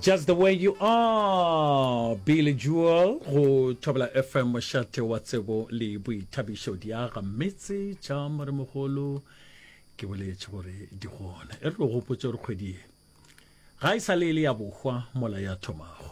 just the way you are billy jewel go thobela fm mošate wa tsebo le boithabišo diaga metse tša moremogolo ke boletše gore di gona e re lo gopotse gore kgwedi ye ga e sa le e le ya bohwa mola ya thomago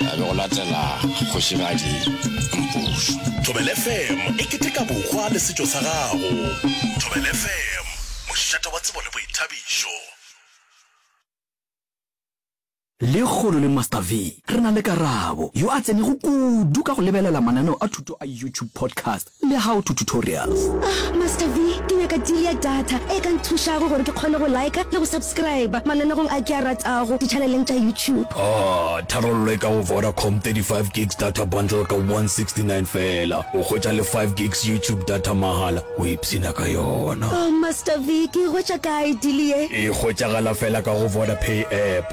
a be go latela kgošigadi mpušu Thobel FM e keteka bohwa le setšo sa gago Thobel FM, mošate wa tsebo le boithabišo. Lekgolo le Master V, re na le Karabo, yo a tsenego kudu ka go lebelela mananeo a thuto a YouTube podcast. Le how to tutorials. Ah Master V, ke nyaka deal ya data e ka nthušago gore ke kgone go liker le go subscriber mananegong a ke a ratago di-channeleng tša YouTube. Ah, tharollo e ka go Vodacom, 35 gigs data bundle ka 169 feela, o hwetša le 5 gigs YouTube data mahala, o ipshina ka yona. Oh Master V, ke e hwetša kae deal ye? E hwetšagala feela ka go Vodapay app.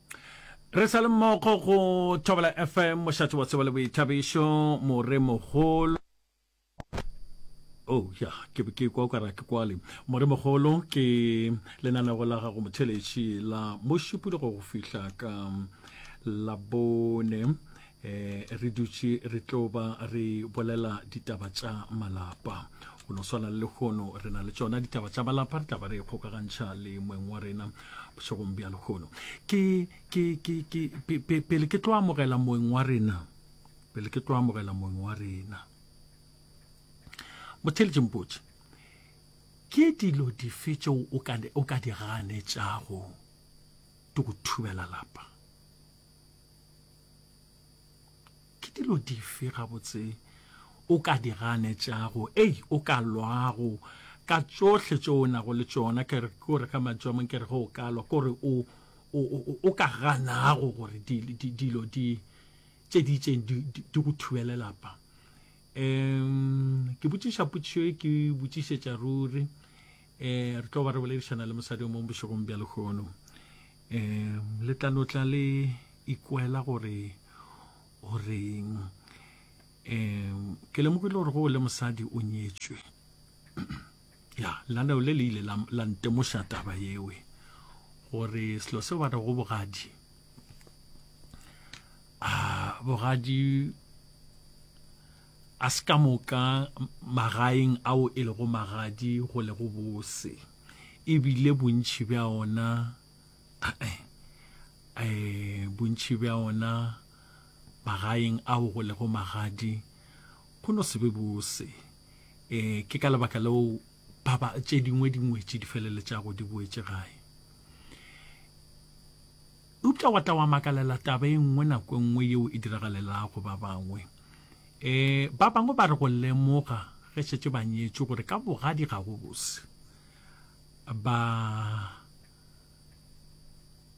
re sa le mmogo go thobela fm mošatse wa tseba le boithabišo more mogolo oh ya ke ke kwa ka ra ke kwale more mogolo ke lenanego la gago motheletši la mošupologo go fihla ka labone Eh, re dutše re tlo ba re bolela ditaba tša malapa go no swana le lekgono re na le tsona ditaba tša malapa re taba re e kgokagantšha le moeng wa rena bošegong bja lekgono pele ke tlo amogela moeng wa rena pele ke tlo amogela moeng wa rena motheletše mpotse ke dilo dife tšeo o ka di ganetšago di go thubela lapa Ke dilo dife gabotse o ka di ganetšago? Ei, o ka lwago ka tšohle tšeo o nago le tšona. Ke re, ke o re ka mantšu a mang, ke re ge o ka lwa, ke gore o, o, o, o ka ganago gore di, di, dilo di, tše di itšeng di, di, di go thubele lapa. Um, ke botšiša potšišo e, ke botšišetša ruri. Um, re tlo ba re boledišana le mosadi o mong bošegong bja lehono. Ee, le tla no tla le ikwela gore o reng. Ee, ke lemogile gore go o le mosadi o nyetswe. ya, laneo le le ile la, la ntemoša taba yewe gore selo seo ba re go bogadi a bogadi a se ka moka magaeng ao e lego magadi go le go bose e bile bontši bja ona um bontši bja ona magaeng ao go lego magadi go no se be bose um ke ka lebaka leo ba ba tše dingwe dingwetši di feleletšago di boetše gae Eupša wa tla wa makalela taba e nngwe nako e nngwe yeo e diragalelago ba bangwe. E, ba bangwe ba re go lemoga ge šetše ba nyetšwe gore ka bogadi ga go bose. Ba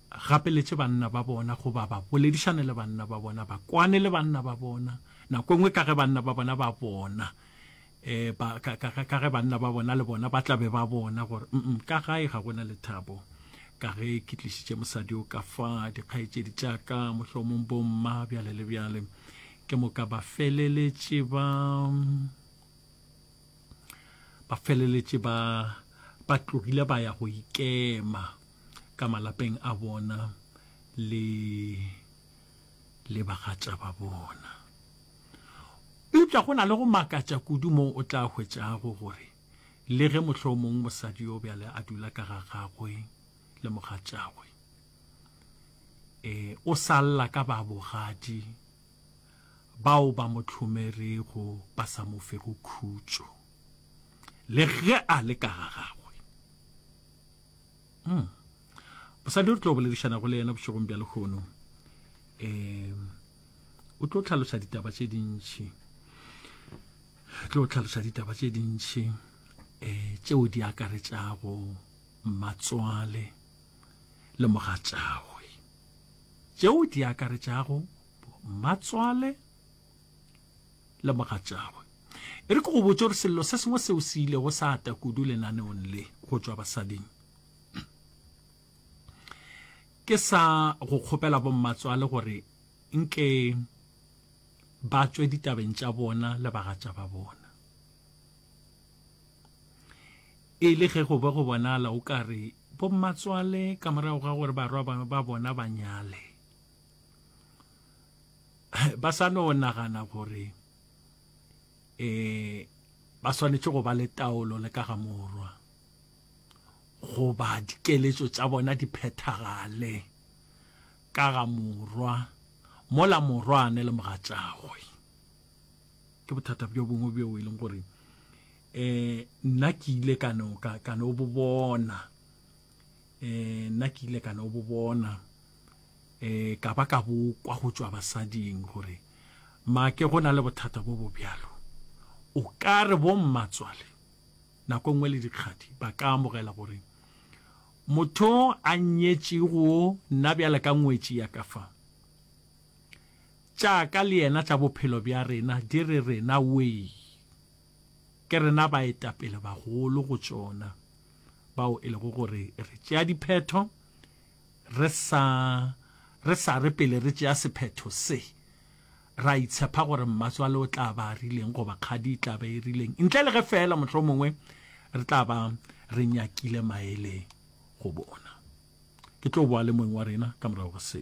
gapeletše banna ba bona goba ba boledišane le banna ba bona, ba kwane le banna ba bona, nako e nngwe ka ge banna ba bona ba bona eh, ba, ka, ka, ka ge banna ba bona le bona ba tla be ba bona gore mm ka gae ga gona lethabo ka ge ke tlišitše mosadi o ka fa dikgaetšedi tša ka mohlomong bomma bjale le bjale ke moka ba feleletše ba ba feleletše ba ba tlogile ba ya go ikema ka malapeng a bona le le bagatša ba bona Eupša go na le go makatša kudu moo o tla hwetšago gore le ge mohlomong mosadi yo bjale a dula ka ga gagwe le mogatšagwe, e, o sa lla ka babogadi bao ba mo hlomerego ba sa mo fego khutšo le ge a le ka ga gagwe. Mm. Mosadi o re tlo boledišanago le yena bošegong bja lekgono um o tlo tlhaloša ditaba tše dintšhi tlo tlhaloša ditaba tše dintšhi um tšeo di akaretšago matswale le mogatšagwe tšeo di akaretšago matswale le mogatšagwe. E re ke go botše gore sello se sengwe seo se ilego sa ata kudu lenaneong le go tšwa basading. Ke sa go kgopela bommatswale gore nke ba tswe ditabeng tša bona le bagatša ba bona. E le ge go be go bonala o ka re bommatswale ka morago ga gore barwa ba bona ba nyale, ba sa no nagana gore eh ba swanetše go ba le taolo le ka ga morwa goba dikeletšo tša bona di phethagale ka ga morwa mola morwane le mogatšagwe ke bothata bjo bongwe bjo e leng gore eh nna ke ile ka no ka no bo bona um nna ke ile ka no bo bona um ka ba ka bo kwa go tšwa basading gore maake go na le bothata bo bo bjalo o ka re bommatswale nako nngwe le dikgadi ba ka amogela gore motho a nyetšego nna bjale ka ngwetši ya ka fa tša ka le yena tša bophelo bja rena di re rena wee Ke rena baetapelebagolo go tšona bao e lego gore re tšea diphetho re sa re sa re pele re tšea sephetho se, ra itshepa gore mmatswale o tla ba a rileng goba kgadi e tla ba e rileng, ntle le ge feela mohlomongwe re tla ba re nyakile maele go bona. Ke tlo boa le moeng wa rena ka morago ga se.